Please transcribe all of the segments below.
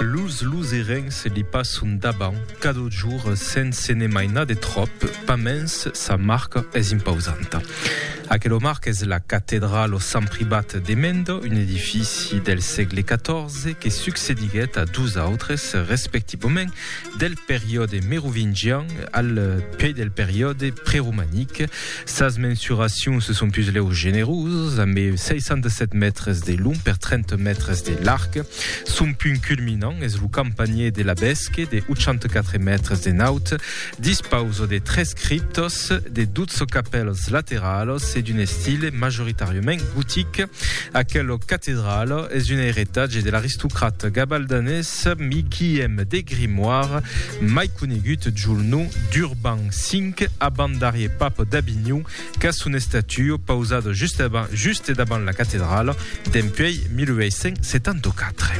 Los luserencs li passon davant cada jorn sens se ne mainar de tròp, pasmens sa marca es impausanta. Aquela marca es la catedrala Sant Privat de Mende, un edifici del sègle 14 que succediguèt a dos autres, respectivament, Del periòde merovingian al puèi del periòde preromanic, sas mensuracions son pus lèu generosas, amb 67 mètres de long per 30 mètres de larg. Son punt culminant es lo campanhièr de la Bèsque de 84 mètres de naut, dispausa de tres criptas, de 12 capèlas lateralas e d'un estile majoritàriament gotic. Aquela catedrala es un eiretatge de l'aristocrat gabaldanés Guillem de Grimoire, mai conegut jol nom d'Urban V, abandarier papa d'Avinhon, qu'a son estatua pausada juste davant la catedrala dempuèi 1874.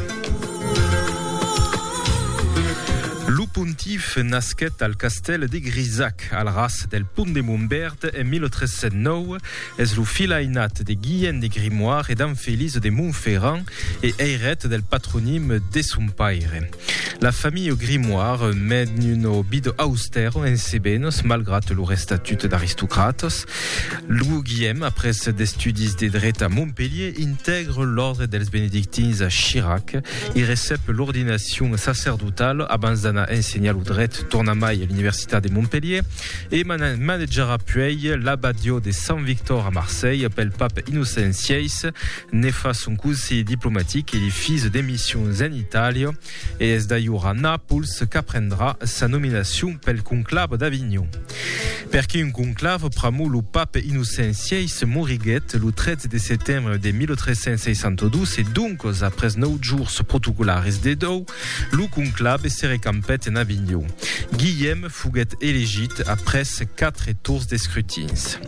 Lo pontif nasquèt al castèl de Grisac, al ras del Pont de Montbèrd en 1309. Es lo filh ainat de Guilhèn de Grimoire e d'Anne Félise de Montferrand e eiret del patronim de son paire. La familha Grimoire mèn una vida austèra en Cebenos malgrat lor estatut d'aristocratas. Lo Guilhèm, après d'estudis de dret a Montpelhier, intègre l'òrdre dels benedictins a Chirac. I recep l'ordinacion sacerdotala abans d'anar ensenhar lo dret tornamai a l'Universitat de Montpelhier. E manejarà puèi l'abadió de Sant Victor a Marselh pel pap Innocent xvi. Ne fa son conselh diplomatic e li fis de missions en Itàlia e es d'ajor a Nàpols qu'aprendrà sa nominacion pel conclave d'Avinhon. Perqué un conclave? Pr'amor lo pap Innocent xvi moriguèt lo 13 de setembre de 1362 e doncas après nòu jors protocolaris de dòu Lo conclave se recampèt en Avinhon. Guilhèm foguèt elegit après quatre tours d'escrutins.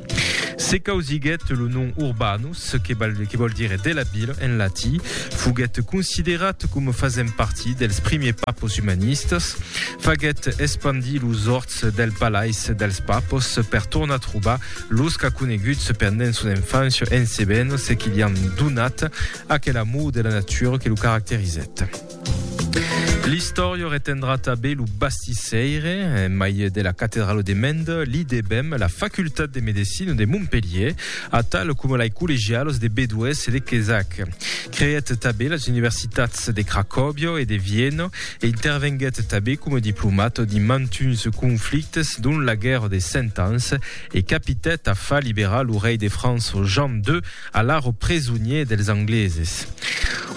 Se causiguèt lo nom Urbanus, que vòl dire de la vila en latí. Foguèt considerat coma fasent partit dels primièrs papos umanistas. Faguèt espandir los òrts del palais dels papos per tornar trobar los qu'aconeguts pendent son enfància en Cebenos e que li an donat Aquel amor de la natura que lo caracterizèt. L'istòria retendrà tanben lo bastissèire, en mai de la catedrala de Mende, l'IDEBEM, la Facultat de Medecina de Montpelhier, atal coma lei collegialas de Bedoèth e de Quézac. Creèt tanben las universitats de Cracòbia e de Viena e intervenguèt tanben coma diplomat dins mantuns conflictes, dont la Guèrra des Cent Ans, e capitèt a far liberar lo rei de França Jean ii, Alaro presonier dels Angleses.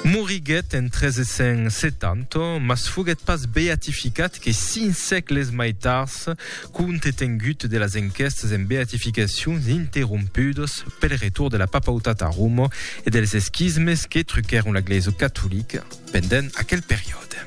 Moriguèt en 1370, mas foguèt pas beatificat que cinc sègles mai tard, compte tengut de las enquèstas en beatificacions interrompudas pel retorn de la papautat a Roma e dels esquismes que truquèron la glesa catolica pendent aquel periòde.